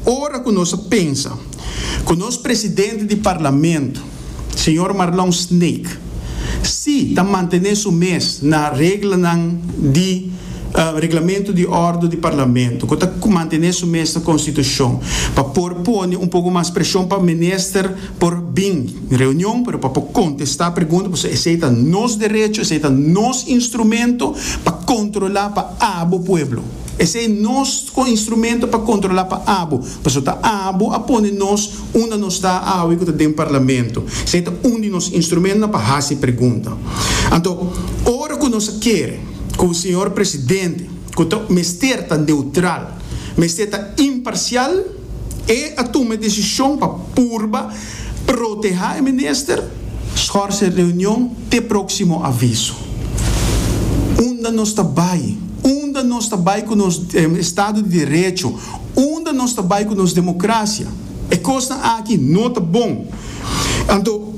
Ora cu nos a pensa cu nos Presidente di Parlamento, Señor Marlon Snake, si ta mantene su mes na reglanan di Reglamento di Ordo di Parlamento, cu ta mantene su mes na Constitucion, pa por pone un poco mas presion pa Minister por bin reunion, pero pa por contesta pregunta, pasobra esey ta nos derecho, esey ta nos instrumento pa controla, pa abo pueblo. Esei nos con instrumento pa controla pa abo, pasobra ta abo a pone nos unda nos ta awe cu ta den Parlamento. Esei ta un di nos instrumentonan pa haci pregunta. Anto, ora cu nos a kere cu Señor Presidente, cu ta mester ta neutral, mester ta imparcial, E a tuma e desishon pa purba protehá e minister. Schorse e reunion te próksimo aviso. Unda nos ta bai? Unda nos ta bai ku nos estado di derecho? Unda nos ta bai ku nos demokrasia? E kosnan aki no ta bon. Anto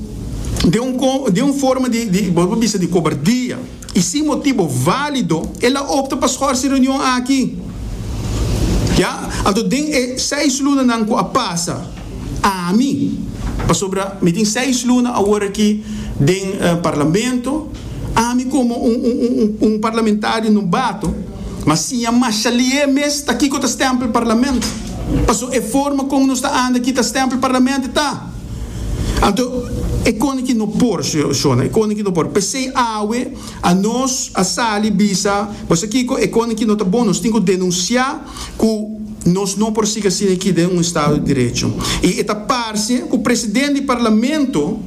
den un forma di, bo ta bisa, di kobardia. I sin motibo válido el a opta pa schors e reunion aki. Ya, anto den e seis lunanan ku a pasa, ami, pasobra mi tin seis luna awor aki den Parlamento, ami komo un parlamentario nobato, mas siña Mashalié mes ta kiko ta stèmpel Parlamento, paso e forma kon nos ta anda aki ta stèmpel Parlamento ta. Anto e kone ki no por, shona, e kone ki no por. P'esei awe anos a sali bisa, bo sa kiko, e kone ki no ta bon nos tin ku denunsiá ku nos no por sigui asina aki den un estado di derecho. I e ta parse ku presidente di parlamento,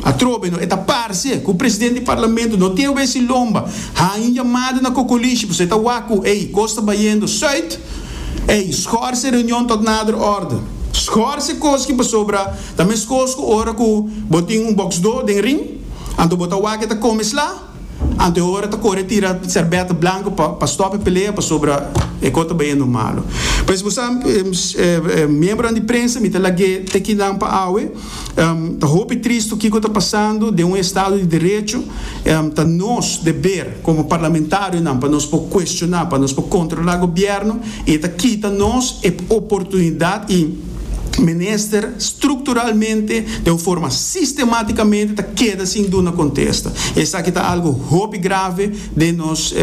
atrobe no, e ta parse ku presidente di parlamento no tin obe si lomba, haña un yamada na kokolishi, pasobra e ta wak ku, ey, kos ta bayendo sùit. Ey, schorse reunion tot nader orde. Schorse cos ki pasobra ta mescos cu ora cu bo tin un box do den ring, anto bo ta wak ta come sla, anto e ora ta core tira serbet blanco pa pa stop e pelea pasobra e cos ta bayendo malo. Pues bo sa, miembronan di prensa mi ta lag'e te kinan pa awe. Ta hopi tristu kiko ta pasando den un estado di derecho. Ta nos deber como parlamentarionan pa nos por cuestiona, pa nos por controla gobierno y e ta kita nos e oportunidad y menester structuralmente den un forma sistematicamente ta keda sin duna contesta. Esaki ta algo hopi grave den nos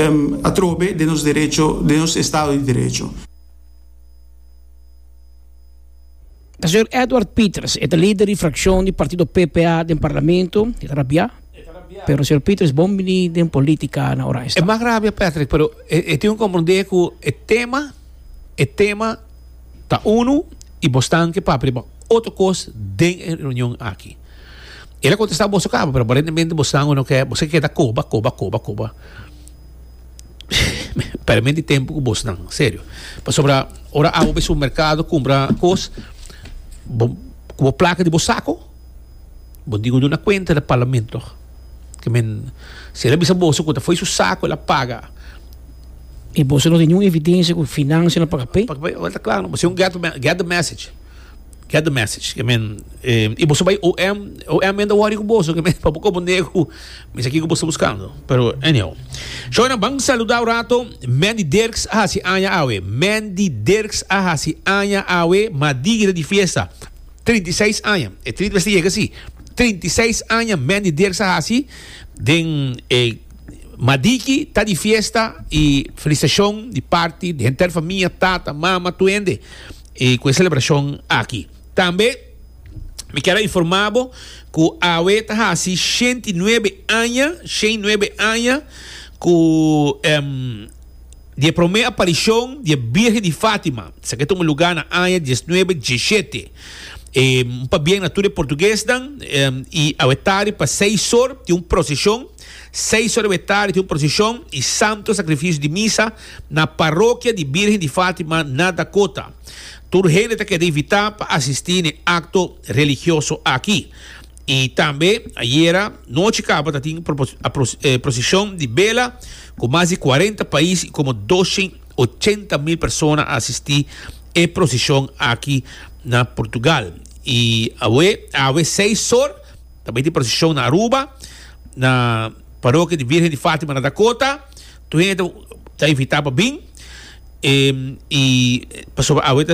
atrobe den nos derecho, den nos estado di derecho. E señor Edward Pieters, e ta lider di frakshon di partido PPA den parlamento, e ta rabiá. Pero señor Pieters, bon biní den polítika na Oranjestad. E mak rabia Patrick, pero e tin ku komprondé ku e tema, e tema ta unu i boso ta ke papia riba otro kos den e reunion aki. El a kontestá boso kaba, pero aparentemente boso ta boso ke keda koba, koba, koba, koba. Permen di tempu ku bos nan, serio. Pasobra ora abo bai supermerkado kumpra kos, bo ku bo plaka di bo sako, bo tin ku duna kuenta na parlamento. Ke men, si el a bisa boso ku ta fo'i su sako el a paga, I boso no tin ningún evidensia ku finansia no a paga p'e? a paga p'e, ora ta kla, boso es un get the message. Get the message. Ke men, eh, i boso bai OM, OM men ta worry ku boso, ke men, pa bo kopo nego, mi sa kiko boso buskando. Pero, anyhow. Shona, ban saluda un rato, Mandy Dirks a hasi aña awe. Mandy Dirks a hasi aña awe, madigi ta di fiesta. Trinta i seis aña. E trinta mester yega si. Trinta i seis aña Mandy Dirks a hasi, den, eh, madigi ta di fiesta, i felisitashon di parti di henter famia, tata, mama, tur hende. E cu e celebracion aki. Tambe mi kier a informa bo cu awe ta haci shenti y nuebe aña, shen y nuebe aña cu em, di e prome aparicion di e Birgen di Fatima. Esaki a tuma lugar na aña diesnuebe diesshete. E un pabien na tur e portuguesnan em, y awe tardi pa seis or tin un procesion. Seis ora dje tardi tin un prosishon i santo sakrifisio di misa na Parokia di Birhen di Fatima na Dakota. Tur hende ta keda invitá pa asistí n'e akto religioso aki. I tambe ayera nochi kaba ta tin prosishon di bela ku mas di kuarenta pais i komo dos e ochenta mil persona a asistí e prosishon aki na Portugal. I awe awe seis or. Ta bai di procesion na Aruba, na parokia di Virgen di Fatima na Dakota. Tur hende ta invita pa bin. E, i pasobra awe ta